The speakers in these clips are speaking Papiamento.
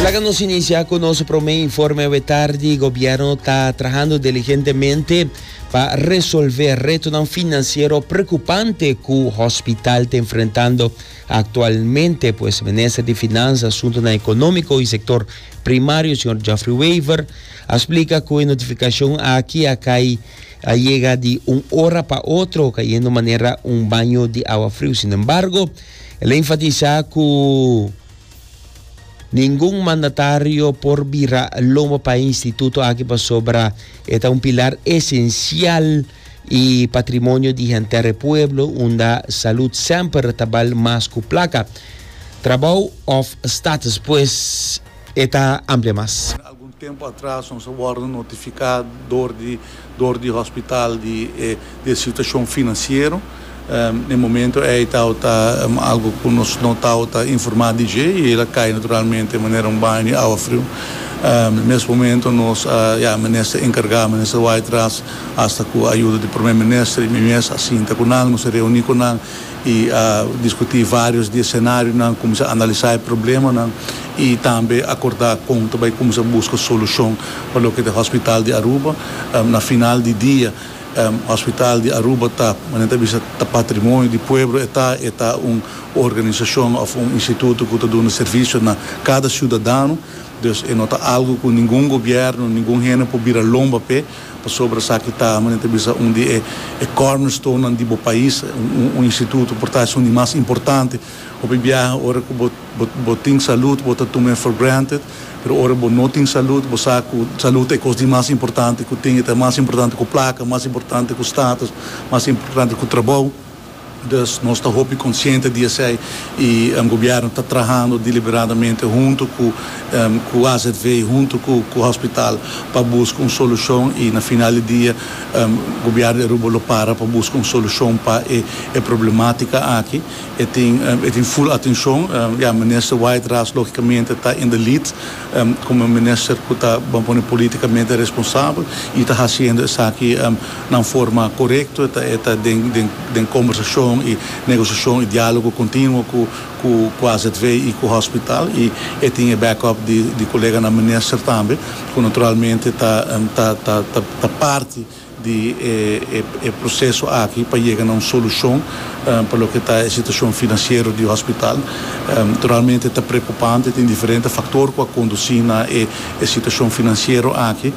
Laga nos inicia cu nos prome informe awe tardi. Gobierno ta trahando diligentemente pa resolve retonan financiero preocupante cu hospital ta enfrentando actualmente, pues Minister di Finanzas, Asuntonan Economico y Sector Primario, señor Geoffrey Wever, a splica cu e notificacion aki a cay a yega di un ora pa otro, cayendo manera un baño di awa friu. Sin embargo, El a enfatisá ku ningun mandatario por bira lomba pa e instituto aki pasobra e ta un pilar esensial i patrimonio di henter e pueblo unda salud semper ta bal mas ku plaka. Trabou òf status pues? E ta amplia mas. Den algun tempu atras nos a wòrdu notifiká dor di hospital di e situashon finansiero. Na e momentu ei tabata algu ku nos no tabata informá di dje i el a kai naturalmente manera un baño di awa friu. Mes momentu nos a ya Minister enkargá, Minister Wytras, asta ku ayuda di Prome Minister i mi mes a sinta ku nan, nos a reuní ku nan. E a diskutí vários di e senarionan, kuminsá analisá e problemanan i tambe akordá kon ta bai kuminsá buska solushon pa loke ta e Hòspital di Aruba. Na final di dia, Hòspital di Aruba ta, nan ta bisa, ta patrimonio di pueblo e ta, e ta un organisashon òf un instituto ku ta duna servisio na kada siudadano, dus e no ta algu ku ningun gobièrnu, ningun hende por bira lomba p'e. Pasobra esaki ta, manera ta bisa, un di e cornerstonenan di bo pais, un instituto por ta esun di mas importante. Hopi biaha ora ku bo bo tin salud bo ta tumae for granted, pero ora bo no tin salud bo sa ku salud ta e kos di mas importante ku tin, e ta mas importante ku plaka, mas importante ku status, mas importante ku trabou. Dus, nos ta hopi konsiente di esei i Gobièrnu ta trahando diliberadamente huntu ku azv, huntu ku hòspital pa buska un solushon i na final di dia Gobièrnu di Aruba lo para pa buska un solushon pa e problematika aki. E tin ful atenshon. Ya, Minister White Ras lógikamente ta in the lead. Komo e minister ku ta bon pone politikamente responsabel i ta hasiendo esaki na un forma korekto, e ta den kombersashon i negosiashon i diálogo kontinuo ku azv i ku hòspital i e tin e backup di koleganan minister tambe ku naturalmente ta parti. di e proseso aki pa yega na un solushon pa loke ta e situashon finansiero di hospital. Realmente ta preokupante, tin diferente faktor ku a kondusí na e situashon finansiero aki,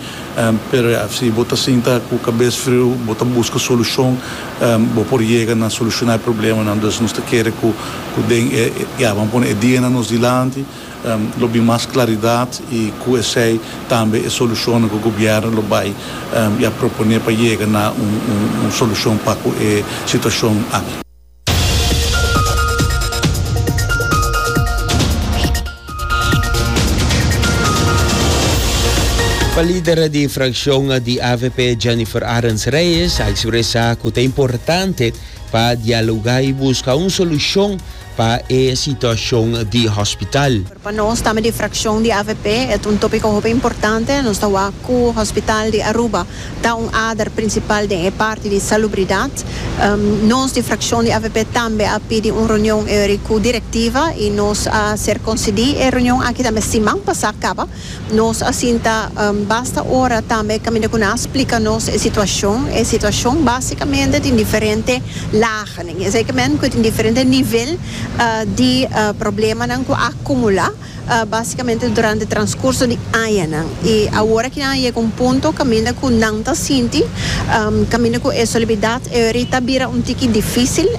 pero ya, si bo ta sinta ku kabes friu, bo ta buska solushon, bo por yega na solushoná e problemanan. Dus nos ta kere ku den e, ya, bo a pone e dianan nos dilanti. Lo bin mas claridad y cu esey tambe e solucionnan cu gobierno lo bay y a propone pa yega na un solucion pa cu e situacion aki. Pa lidera di fraccion di avp Jennifer Arends Reyes a expresa cu ta importante pa dialoga y busca un solucion pa e situashon di hospital. Pa nos tambe di frakshon di avp e ta un topiko hopi importante. Nos ta wak ku hospital di Aruba ta un ader prinsipal den e parti di salubridat. Nos di frakshon di avp tambe a pidi un reunion e ori ku direktiva i nos a ser konsidí e reunion aki tambe siman pasá kaba. Nos a sinta basta ora tambe caminda cu nan a splica nos e situacion. E situacion basicamente tin diferente lagennan. Esey ta men cu tin diferente nivel di problemanan cu a acumula basicamente durante transcurso di añanan. Y awor aki nan a yega un punto caminda cu nan ta sinti caminda cu e solemnidad eori ta bira un tiki dificil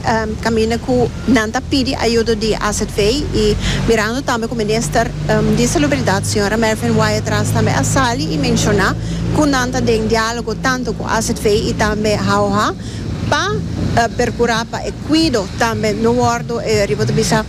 caminda cu. Nan ta pidi ayudo di AZV y mirando tambe cu Minister di Salubridad Sra. Mervin Wyatt Ras tambe a sali y menciona cu nan ta den dialogo tanto cu AZV y tambe HAOHA pa percura pa e cuido tambe no wordo riba ta bisa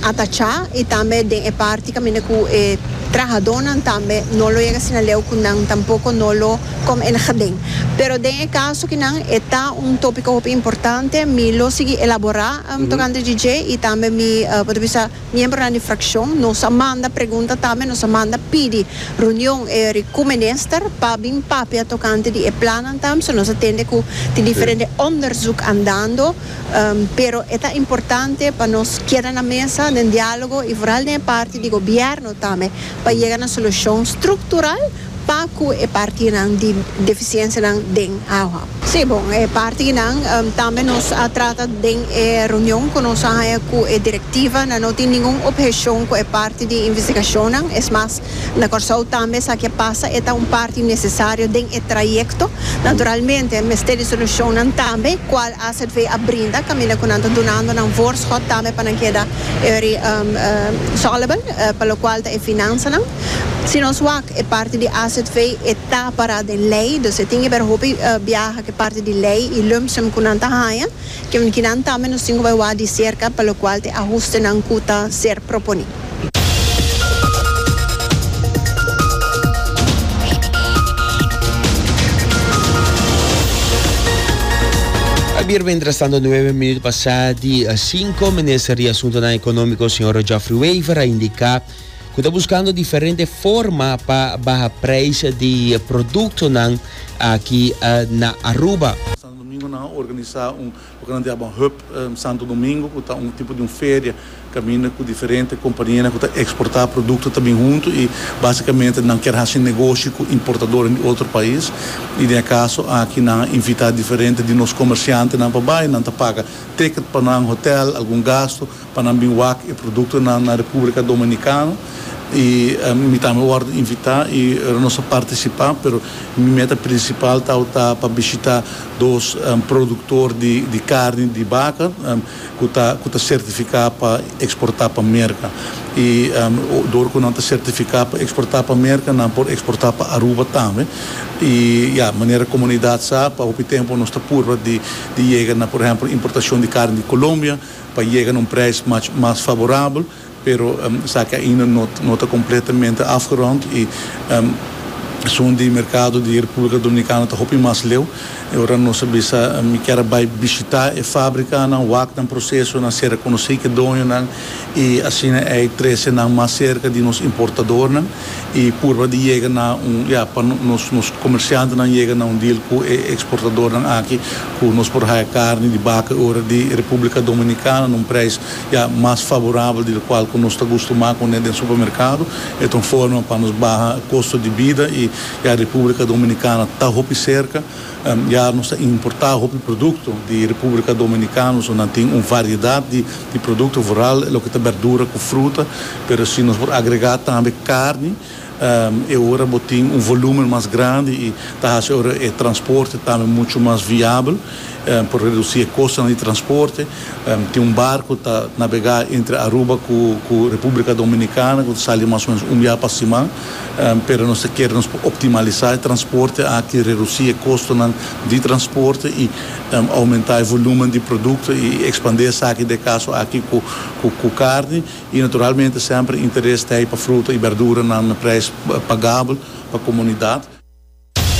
atacha y tambe den e parti caminda cu e trahadonan tambe no lo yega asina leu cu nan tampoco no lo com en Hding. Pero den e caso ki nan e ta un topico hopi importante, mi lo sigui elabora tocante di dje y tambe mi, por ta bisa, miembronan di fraccion, nos a manda pregunta tambe, nos a manda pidi reunion eri cu minister pa bin papia tocante di e plannan tambe, so nos a tende cu tin diferente onderzoek andando, pero e ta importante pa nos keda na mesa den dialogo y vooral den e parti di gobierno tambe pa yega na solucion structural. Pa cu e partinan di deficiencianan den agua? Si, bon, e partinan tambe nos a trata den e reunion cu nos a haya cu e directiva. Nan no tin ningun obhecion cu e parti di investigacionnan. Es mas, na Corsou tambe esaki a pasa, e ta un parti necesario den e trayecto. Naturalmente, mester di solucionnan tambe, cual AZV a brinda caminda cu nan ta dunando nan voorschot tambe pa nan keda early soluble, pa locual ta e finanzanan. Si nos wak e parti di azv e ta pará den lei, dus e tin ke ber hopi biaha ku e parti di lei i lumpsum ku nan ta haña, kinan tambe nos tin ku bai wak di serka pa lokual ta e ahustenan ku ta ser proponí. Bierba interesante nueve minuut pasá di sinku, Minister di Asuntunan Ekonómiko, señor Geoffrey Wever, a indiká. ku ta buskando diferente forma pa baha preis di produktonan aki na Aruba. Santo Domingo nan a organisá un loke nan ta yama Hub Santo Domingo ku ta un tipo di un feria kaminda ku diferente kompanianan ku ta eksportá produkto ta bin huntu i básikamente nan kier hasi negoshi ku importadornan di otro pais i den e kaso aki nan a invitá diferente di nos komersiantenan pa bai nan ta paga ticket pa nan, hotèl, algun gastu. pa nan bin wak e produktonan na Republica Dominicano y mi tambe wòrdu invitá y nos a participá pero mi meta principal tawata ta pa bishitá dos productor di carni di baca cu ta cu ta certificá pa exportá pa Merca y dor cu nan ta certificá pa exportá pa Merca nan por exportá pa Aruba tambe y ya manera comunidad sa pa hopi tempo nos ta purba di yega na por ehempel importacion di carni di Colombia. pa yega na un prijs mach mas favorabel, pero esaki ainda no no ta completamente afgerond y esun di mercado di Republica Dominicana ta hopi mas leu. E ora nos a bisa mi kier a bay bishita e fabricanan, wak nan procesonan, sera conoci ki doñonan y asina ey trece nan mas cerca di nos importadornan. y purba di yega na un ya pa nos nos comerciantenan yega na un deal cu e exportadornan aki cu nos por haya carni di baca y ora di Republica Dominicana na un prijs ya mas favorabel di locual cu nos ta gustumá cune den supermercado e ta un forma pa nos baha costo di bida y ya Republica Dominicana ta hopi cerca Ya nos ta importá hopi produkto di Repúblika Dominikano, so nan tin un variedat di produkto, vooral loke ta bèrdura ku fruta, pero si nos por agregá tambe karni, e ora bo tin un volúmen mas grandi i ta hasi ora e transporte tambe muchu mas viabel, por redusí e kostonan di transporte. Tin un barko ta nabegá entre Aruba ku Repúblika Dominikana ku ta sali mas o ménos un biaha pa siman. pero nos ta kere nos por optimalisá e transporte aki, redusí e kostonan di transporte i oumentá e volúmen di produkto i ekspandé esaki den e kaso aki ku karni i naturalmente semper interes t'ei pa fruta i berduranan na preis pagabel pa komunidat.